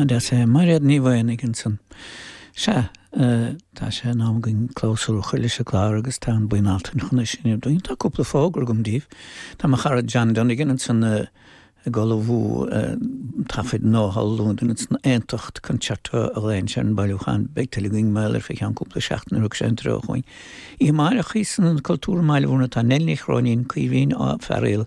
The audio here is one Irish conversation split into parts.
Nadia sé Mairéad Ní Mhaonaigh ansan. Sea, tá sé in am againn clabhsúr a chur leis an gclár agus tá an bhuíon Altan chun é sin a dhéanamh. Tá cúpla fógra agam díbh. Tá mo chara John Donegan ansan ag ullmhú taifid nua thall i Londain ansan Aontacht Concerto a dhéanann sé ar an mbailiúchán. Beidh tuilleadh againn mar gheall air i gceann cúpla seachtain nuair a thug sé an treoir chugainn. Oíche amárach istigh san Ionad Cultúrtha i mBaile Mhúirne tá Nell Ní Chróinín, Caoimhín Ó Fearghail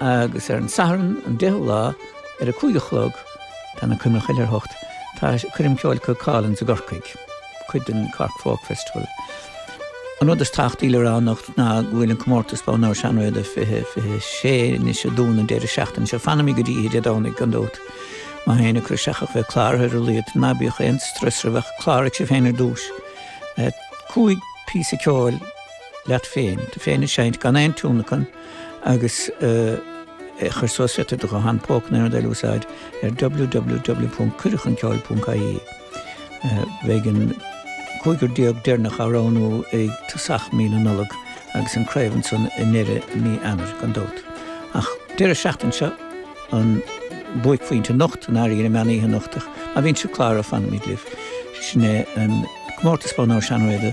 agus ar an Satharn an deichiú lá ar a cúig a chlog tá na coimre choille ar a hocht tá coirm Cheoltóirí Chualann i gCorcaigh, cuid den Cork Folk Festival. An rud is tábhachtaí le rá anocht ná go bhfuil an comórtas Bonn Óir Seán Ó Riada fiche fiche a sé anois ag dúnadh an deireadh seachtaine seo fanaimíd go dtí oíche Dé Domhnaigh gan dabht. Má tá éinne ag cur isteach ach bheith cláraithe ar a laghad ná bíodh aon strus oraibh ach cláraigh sibh féin ar dtús. Cúig phíosa ceoil leat féin, tú féin ag seinnt gan aon tionlacan, agus a chur suas féadann tú do ghuthán póca na n-airdeall a úsáid ar www.cuireadhchunceoil.ie. Beidh an 15 deireanach á roghnú i dtosach mí na Nollag agus an chraobh ansan i ndeireadh mí Eanáir, gan dabht. Ach an deireadh seachtaine seo an buaicphointe anocht, an Airgid, an meán oíche anocht, ach má bhíonn sibh cláraithe fanfaimid libh. Sin é an comórtas Bonn Óir Seán Ó Riada.